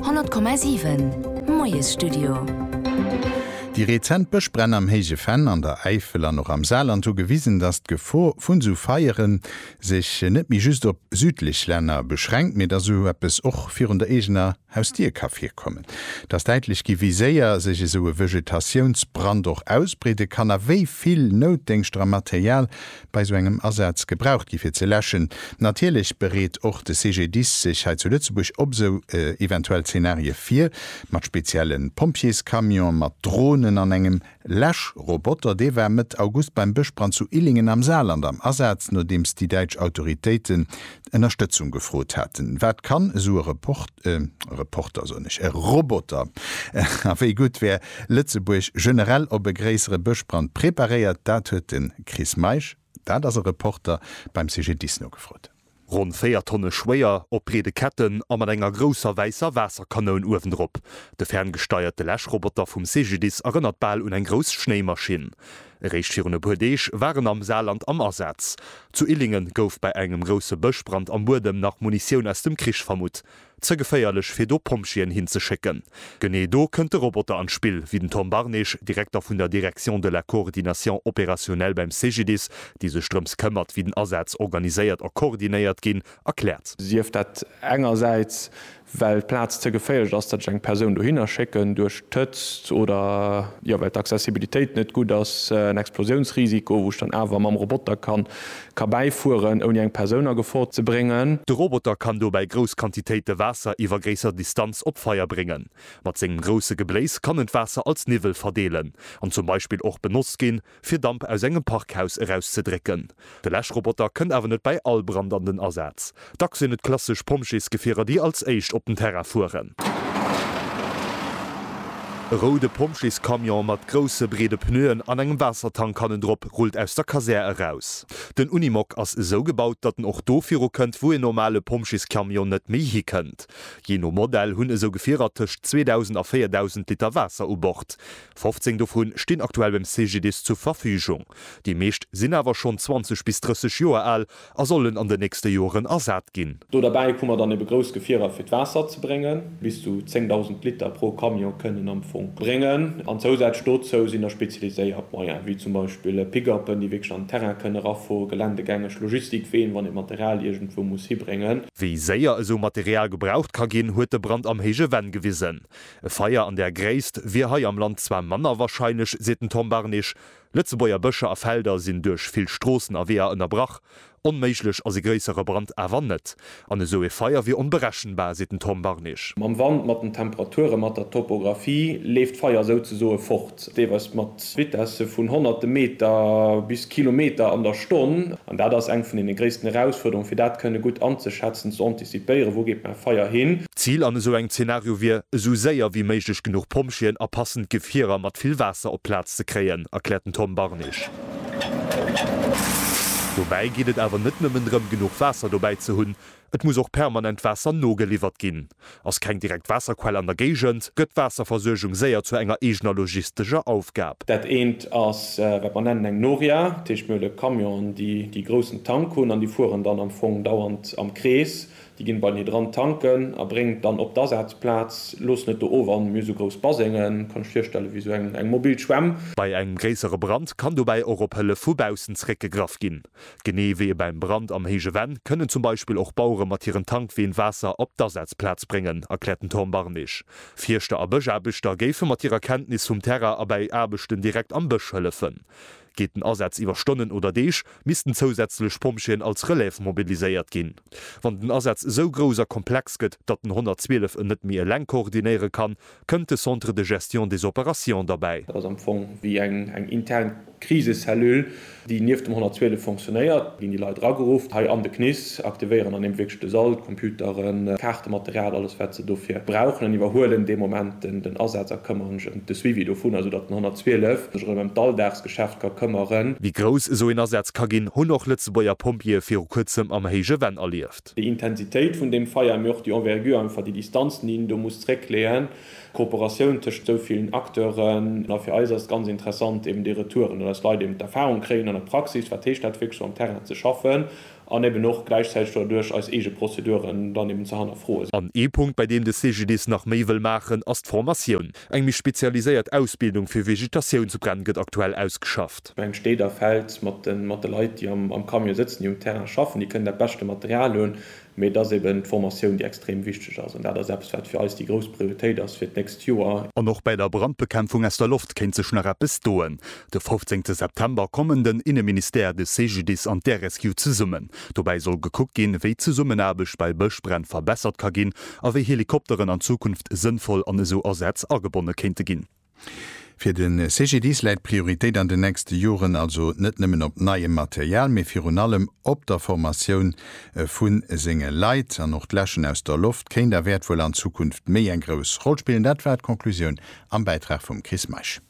100,7 Moiesstudio. Déi rezent Bëschbränn am Héije Venn, an der Äifel an och am Saarland hu gewisen, datt d'Gefor vu sou Feiere sech net méi just op südlech Länner beschränkt, mee datt sou eppes och virun der eegener Hausdier ka virkommen. Et ass däitlech gi wéi séier sech esou e Vegetatiounsbrand och ausbreede kann a wéi vill Noutdéngschter a Material bei sou engem Asaz gebraucht gi fir ze läschen. Natierlech bereet och de CGDIS sech hei zu Lëtzebuerg op sou eventuell Zenarie vir, mat spezielle Pompjeescamionen, mat Dronen an engem Läschroboter. Dee war Mëtt August beim Bëschbrand zu Illingen am Saarland am Asaz, nodeems déi däitsch Autoritéiten Ënnerstëtzung gefrot haten. Wat kann esou e Reporter, soen ech, e Roboter? A wéi gutt wär Lëtzebuerg generell op e gréissere Bëschbrand preparéiert? Dat huet de. Chris Meisch, Dat ass e Reporter beim CGDIS nogefrot. Ronn 4 Tonne schwéier, op breede Ketten a mat enger grousser wäisser Waasserkanoun uewendrop. De ferngesteierte Läschroboter vum CGDIS erënnert bal un eng grouss Schnéimaschinn. Eréischt virun e puer Deeg war en am Saarland am Asaz. Zu Illingen gouf bei engem grousse Bëschbrand am Buedem nach Munitioun aus dem Krich vermutt. Ze geféierlech fir do Pompjeeën hin ze schécken. Genee do kënnt de Roboter an d'Spill, wéi den Tom Barnage, Direkter vun der Direction de la coordination opérationnelle beim CGDIS, déi sech drëms këmmert, wéi den Asaz organiséiert a koordinéiert ginn, erkläert. Sief dat engersäits, well d'Plaz ze geféierlech ass, datt ech eng Persoun dohinner schécken, duerch d'Hëtzt oder, jo, well d'Accessibilitéit net gutt ass, en Explosiounsrisiko, wou ech dann awer mam Roboter ka Ka bäifueren, ouni eng Persoun a Gefor ze bréngen. De Roboter kann dobäi grouss Quantitéite Waasser iwwer gréisser Distanz op Feier bréngen. Mat sengem grousse Gebléis kann en d'Waasser als Niwwel verdeelen an zum Beispill och benotzt ginn, fir Damp aus engem Parkhaus erauszedrécken. De Läschroboter kënnt awer net bäi all Brand an den Asaz. Dacks sinn et klassesch Pompjeesgefierer, déi als éischt op den Terrain fueren. E roude Pompjeescamion mat grousse, breede Pneuen an engem Waassertank hannendrop rullt aus der Kasär eraus. Den Unimog ass esou gebaut, datt en och do virukënnt, wou een normale Pompjeescamion net méi hikënnt. Jee no Modell hunn esou Gefierer tëscht 2.000 a 4.000 Liter Waasser u Bord. 15 dovu stinn aktuell beim CGDIS zur Verfügung. Déi meescht sinn awer schonn 20 bis 30 Joer al A sollen an den nächste Joeren ersat ginn. Do derbäi hu mer dann ebe grouss Gefierer fir d'Waasser ze bréngen. Bis zu 10.000 Liter pro Camion kënnen am Fong bréngen. An zousätzlech dozou sinn da spezialiséiert Moyen, wéi zum Beispill Pick-upen, déi wierklech an den Terrain kënnen erafueren, geländegängeg Logistikween, wann ee Material iergendwou muss hibréngen. Wéi séier esou Material gebraucht ka ginn, huet de Brand am Héije Venn gewisen. E Feier an där Gréisst wier hei am Land zwar manner warscheinlech, seet den Tom Barnich, Lëtzebuerger Bëscher a Felder sinn duerch vill Stroossen a Weeër ënnerbrach. Onméiglech ass e gréissere Brand awer net. An esou ee Feier wier onberechenbar, seet den Tom Barnich. Mam Wand, mat den Temperature, mat der Topographie leeft d'Feier souzesoe fort, deelweis mat Vitesse vun honnerte Meter bis Kilometer an der Stonn. An dat ass eng vun deene gréissten Erausfuerderunge fir dat kënne gutt anzeschätzen, ze antizipéieren, wou geet mäi Feier hin. D'Zil an esou engem Zenario wier, esou séier wéi méiglech genuch Pompjeeën a passend Gefierer mat vill Waasser op d'Plaz ze kréien, erkläert den Tom Barnich. Dobäi geet et awer net nëmmen drëm, genuch Waasser dobäi ze hunn, et muss och permanent Waasser nogeliwwert ginn. Ass keng direkt Waasserquell an der Géigend, gëtt d'Waasserversuergung séier zu enger eegener logistescher Aufgab. Dat eent ass, wat mer nennen eng Noria, dat heescht, mir hunn e Camion, déi déi groussen Tank hunn an déi fueren dann am Fong dauernd am Krees, Déi ginn beim Hydrant tanken a bréngen et dann op d'Asazplaz. Looss net do of an mir esou grouss Basengen. Kanns dech virstellen, wéi esou eng mobil Schwämm. Bei engem gréissere Brand kann dobäi och op Hëllef vu baussen zeréckgegraff ginn. Genee wéi e beim Brand am héije Venn kënnen zum Beispill och Bauere mat hiren Tankween Waasser op d'Asazplaz bréngen, erkläert den Tom Barnig. Fierschter a Bëschaarbechter géife mat hirer Kenntnis vum Terrain a bäi Aarbechten direkt am Bësch hëllefen. Geet den Asaz iwwer Stonnen oder Deeg, missten zousätzlech Pompjeeën als Relève mobiliséiert ginn. Wann den Asaz esou grouss a komplex gëtt, datt den 112 en net méi eleng koordinéiere kann, kënnt de Centre de gestion des opérations derbäi. Dat ass am Fong wéi eng intern Krisecellule, déi nieft dem 112 fonctionnéiert. Do ginn déi Leit erageruff, hei an de CNIS. ze aktivéieren an eben wierklech de Sall, d'Computeren, d'Kaartematerial, alles wat se dofir brauchen an iwwerhuelen dee Moment den Asaz a këmmeren sech ëm de Suivi dovun, esou datt den 112 sech erëm ëm d'Alldagsgeschäft ka këmmeren. Wéi grouss esou een Asaz ka ginn, hunn och Lëtzebuerger Pompjeeë viru kuerzem am héije Venn erlieft. Déi Intensitéit vun deem Feier, mee och déi Envergure, einfach déi Distanzen, déi een do muss zréckleeën, d'Kooperatioun tëscht esou villen Acteuren. A fir eis ass et ganz interessant eben déi Retouren, dass Leit eben d'Erfahrung kréien an der Praxis, wat heescht dat wierklech sou am Terrain ze schaffen An eben och gläichzäiteg doduerch eis eege Prozeduren dann eben ze hannerfroen. An ee Punkt, bei deem de CGDIS nach méi wëll maachen, ass d'Formatioun. Eng méi spezialiséiert Ausbildung fir Vegetatiounsbränn gëtt aktuell ausgeschafft. Eng steet a fält mat de mat de Leit, déi am am Camion sëtzen, déi um Terrain schaffen, déi kënnen dat beschte Material hunn, mee et ass eben d'Formatioun, déi extrem wichteg ass. An dat ass eppes, wat fir eis déi grouss Prioritéit ass fir d'nächst Joer. An och bäi der Brandbekämpfung aus der Loft kéint sech nach eppes doen. De 15 September kommen den Inneministère, de CGDIS an d'RSU zesummen. Dobäi soll gekuckt ginn, wéi d'Zesummenaarbecht bei Bëschbränn verbessert ka ginn a wéi Helikopteren an Zukunft sënnvoll an esou Asätz agebonne kéinte ginn. Fir de CGDIS läit d'Prioritéit an den nächste Joren also net nëmmen op neiem Material, mee virun allem op der Formatioun vu senge Leit. An och d'Läschen aus der Loft kéint a wäert wuel an Zukunft méi eng grouss Roll spillen. Dat war d'Conclusioun am Bäitrag vum Chris Meisch.